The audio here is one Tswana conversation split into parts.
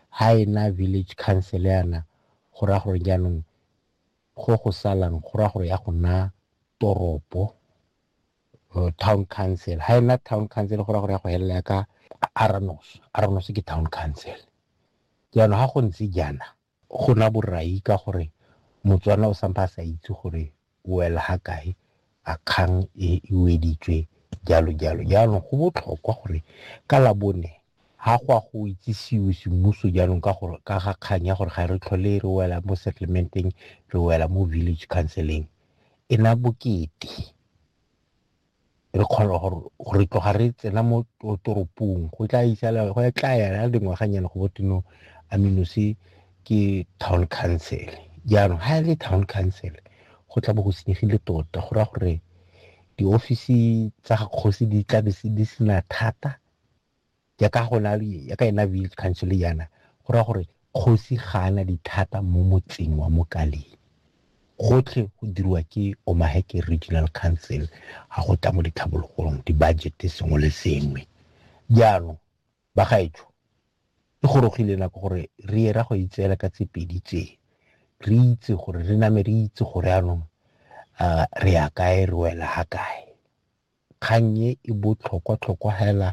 Ha e na village council yana go raya gore jaanong go go salang go raya gore ya go nna toropo or town council. Ha e na town council go raya gore ya go helela ka Arnos. Arnos ke town council. Jaanong ha go ntse jaana go na borai ka gore Motswana o sampa a sa itse gore o wela ha kae a kgang e e weditswe jalo jalo jaanong go botlhokwa gore ka labone ha go a go itsisiwe semmuso jaanong ka gore ka ga kgang ya gore ga re tlhole re wela mo settlementeng re wela mo village counseling e na bokete re kgona gore tloga re tsena mo toropong go tla isala go tla yana dingwaganyana go botino aminose ke town council jaanong ga e le town council go tla bo go senyegile tota go raya gore diofisi tsa kgosi di tla di sena thata ya ka go na le ya ka ena village council yana go ra gore kgosi ga ana dithata mo motseng wa mokaleng gotlhe go dirwa ke omaheke regional council ga go tla mo ditlhabologong di-budget sengwe le sengwe jaanong ba gaetsho e gorogile nako gore re era go itseela ka tse pedi tse re itse gore re name re itse gore anong re ya kae re wela ga kae Kgang e e botlhokwatlhokwa hela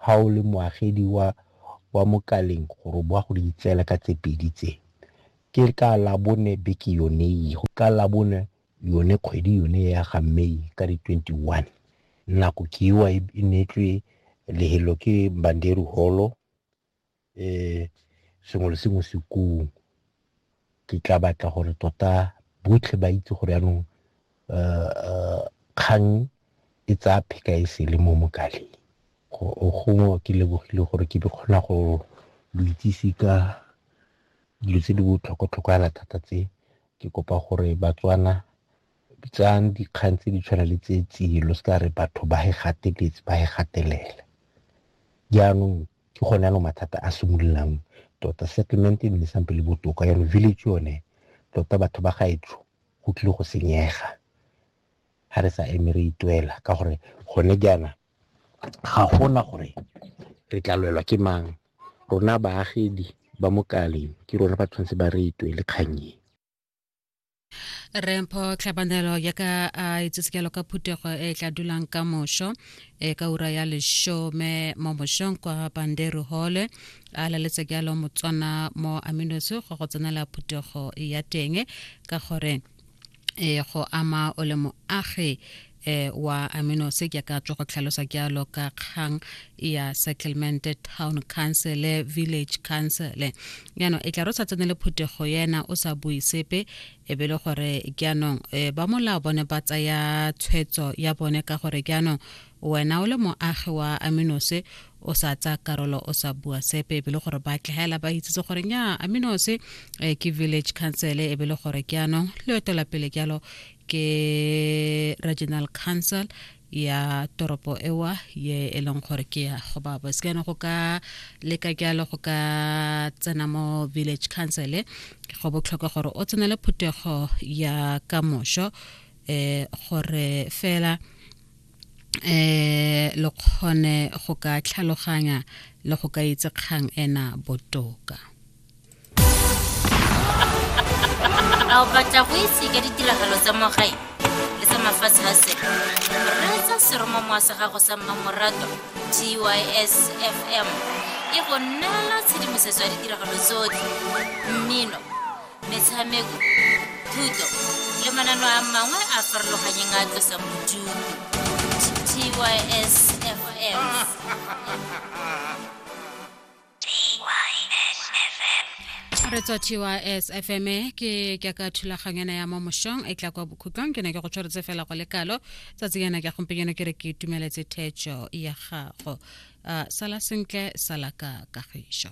ha o le moagedi wa wa Mokaleng gore o bo wa go di itseela ka tse pedi tse. Ke ka Labone beke yone e, ka Labone yone kgwedi yone ya ga May ka di 21. Nako ke ewa e neetswe lehelo ke Mbanderi Holo. um sengwe le sengwe se kong ke tla batla gore tota botlhe ba itse gore yanong um kgang e tsaya pheka e sele mo mokaleng gongwe ke lebogile gore ke di kgona go lo itsise ka dilo tse di botlhokwa-tlhokwa yana thata tse ke kopa gore batswana tsayang dikgang tse di tshwana le tse tselo se ka re batho ba e gateletse ba e gatelela jaanong ke gone ano mathata a simololang tota settlement e nne sampe le botoka yalo village yone tota batho ba gaetsho go tlile go senyega ga re sa eme re itwela ka gore gone jaana ga gona gore re tla lwelwa ke mang rona baagedi ba mokaleng ke rona ba tshwanetse ba re itwele kgannye rempho tlhabanelo ya ka a itsesekelo ka phutego e tla dulang ka mošo e ka ura ya lešome mo mošong kwa banderu hole a laletse jalo motswana mo aminoso go go tsenela phutego ya teng ka gore e go ama o le moagi eh, wa amino se ke ka tswa go tlhalosa ke alo ka kgang ya settlement town council village council yano e tla ro sa tsene le phuthego yena o sa bui sepe e be le gore ke anong eh, ba molao bone ba tsaya tshwetso ya bone ka gore ke anong wena o le moagi wa aminose o sa tsa karolo o sa bua sepe e be le gore ba tlhela ba itsetse gore nya aminose eh, ke village council e be le gore ke anong le etela pele ke alo ke regional council ya toropo ewa ye e leng gore ke ya go ba bos kana go ka leka jalo go ka tsena mo village council e, go botlhokwa gore o tsenele phuthego ya ka mošo eh gore fela eh lo kgone go ka tlhaloganya le go ka itse kgang ena botoka a o batla go itse ka ditiragalo tsa mogae le tsa mafatshe a sele reetsa seromamowa sa gago sa mmamorato tys fm e go neela tshedimosetso ya ditiragalo tsotlhe mmino metshameko thuto le manano a mangwe a farologanyeng a tlosang bodutu tys fm re tswa tys fm ke ke ka thulaganyana ya mo mošong e tla kwa bokhutlong ke ne ke go tshwaretse fela go le kalo tsatsi yana ke gompenyana ke re ke itumeletse thetšo ya gago uh, sala sentle sala ka kagišo